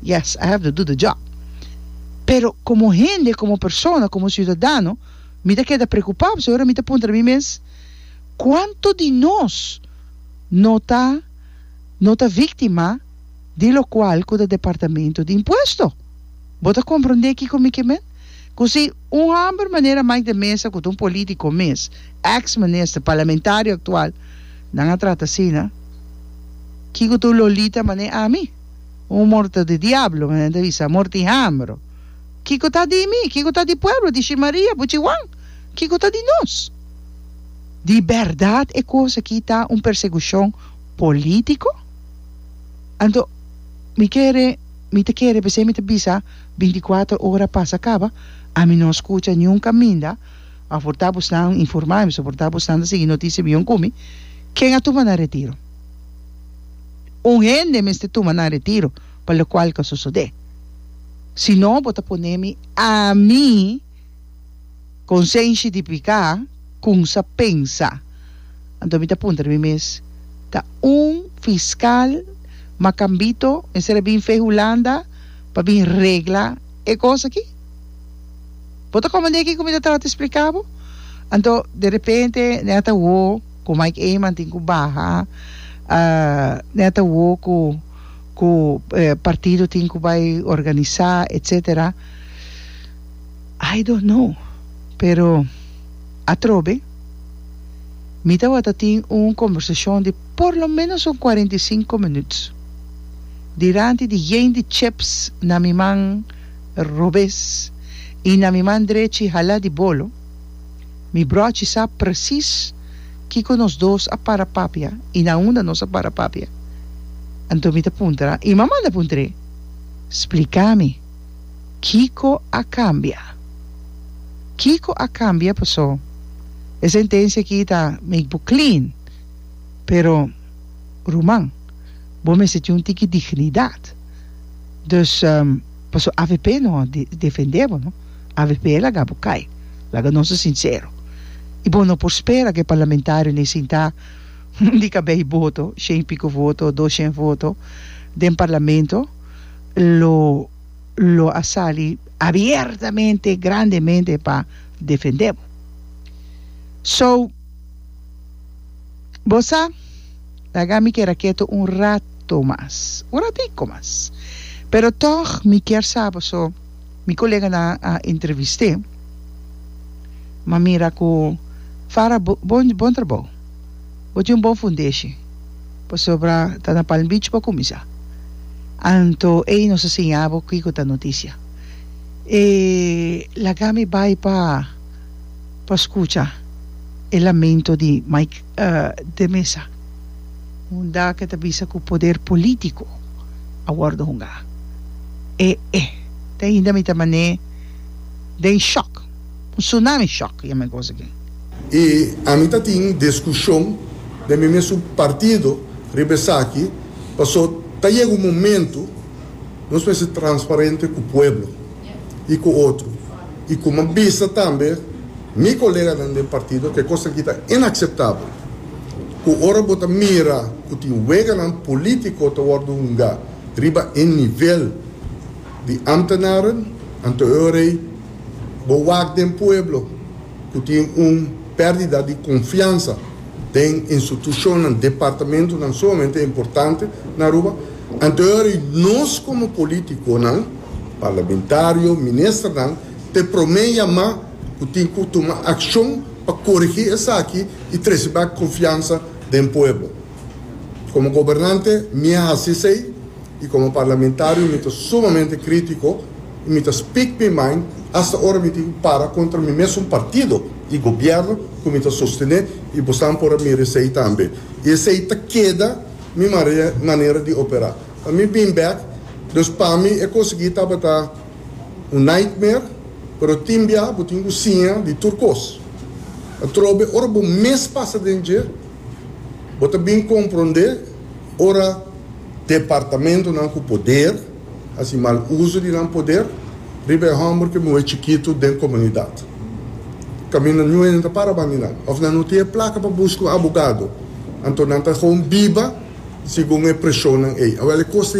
yes I have to do the job pero komo hende komo persona komo siudadano mi ta keda preocupa pasobra ora mi ta puntra mi mes cuanto di nos no ta no ta victima di locual cu ta departamento di impuesto bo ta comprende kico mi ke men cu si un hamber manera Mike de Meza cu ta un politico mes ex minister parlamentario actual nan a trata asina kico ta un lolita mane ami. Un morto di diablo, men ta bisa, morto di hambro. Kiko ta di mi? Kiko ta di pueblo di shi Maria, puchi Juan? Kiko ta di nos? Di berdad e kos aki ta un persecucion politico? Anto mi kere, mi ta kere, p'esei mi ta bisa, binticuatro ora pasa caba, ami no a scucha niun caminda, aporta abosnan informa ami, soporta abosnan ta sigui noticia miyon cu mi, ken a tuma nan retiro? Un hende mester tuma nan retiro pa locual ca sosode. Si no bo ta pone mi ami consenshi di pica cun sa pensa. Anto mi ta punta di mi mes, ta un fiscal macambito mester a bin fe Hulanda pa bin regla e cos aki? Bo ta comende kico mi ta trata explica bo? Anto derepente nan a ta wo. Ku Mike Eman tin ku baha nèt awo ku ku partido tin ku bai organisá etsetera I don't know pero atrobe mi tabata tin un kombersashon di por lo menos un kuarenta i sinku minüts diranti di yen di cheps na mi man robes i na mi man drechi halá di bolo. Mi brochi sa presis kiko nos dos a para papia i na unda nos a para papia. Anto mi ta puntra, i mama ta puntr'é, Splika mi, kiko a kambia? Kiko a kambia pasó e sentensia aki ta make bo clean? Pero, ruman, bo mester tin un tiki dignidat. Dus, pasó avp no a defendé bo no. avp laga bo kai laga nos ta sincero y bo no por spera cu e parlamentario ne sinta un di cada bay voto shen y pico voto dos shen voto den parlamento lo lo a sali abiertamente grandemente pa defende bo so bo sa laga mi keda keto un rato mas un ratico mas pero tog mi kier sa bo so. Mi koleganan a entrevist'é, m'a mira ku, Farah, bo bon bon trabou. Bo tin un bon fundeshi, pasobra ta na Palm Beach bo a kuminsá. Anto ei nos a siña bo kiko ta notisia. E laga mi bai pa pa skucha e lamento di Mike de Mesa. Hunda ke ta bisa ku poder polítiko a wòrdu hunga. E e te ainda mi ta man'é den shòk, un tsunami shòk yama e gosa aki. I ami ta tin diskushon den mi mesun partido riba esaki pasó ta yega un momentu nos mester transparente ku pueblo i ku otro i kuma bisa tambe. Mi koleganan den partido ke kos aki ta inakseptabel, ku ora bo ta mira ku tin weganan polítiko ta wòrdu hunga riba e nivel di ámtenaren, anto e ora ei bo wak den pueblo ku tin un pèrdida di konfiansa den institushonnan, departamentunan sumamente importante na Aruba. Anto e ora ei nos komo polítikonan, parlamentario, ministernan, te promé yamá. ku tin ku tuma akshon pa korigí esaki i trese bèk konfiansa den pueblo. Komo gobernante mi a hasi esei i komo parlamentario mi ta sumamente krítiko i mi ta speak mi mind asta ora mi tin ku para kontra mi mesun partido i gobièrnu ku mi ta sostené i bosan por a mira esei tambe. I esei ta keda mi manera di operá. Mi bin bèk, dus pa mi e konsiguí tabata Un nightmare, pero tin bia bo tin ku siña di tur kos. Atrobe ora bo mes pasa den dje, bo ta bin komprondé ora. Departamentunan ku poder hasi mal uso di nan poder riba e hòmber ku muhé chikitu den komunidat. Kaminda nu hende ta para bandi nan òf nan no tin e plaka pa buska un abogado, anto nan ta gewoon biba segun e preshonnan ei. Awel e kos ta.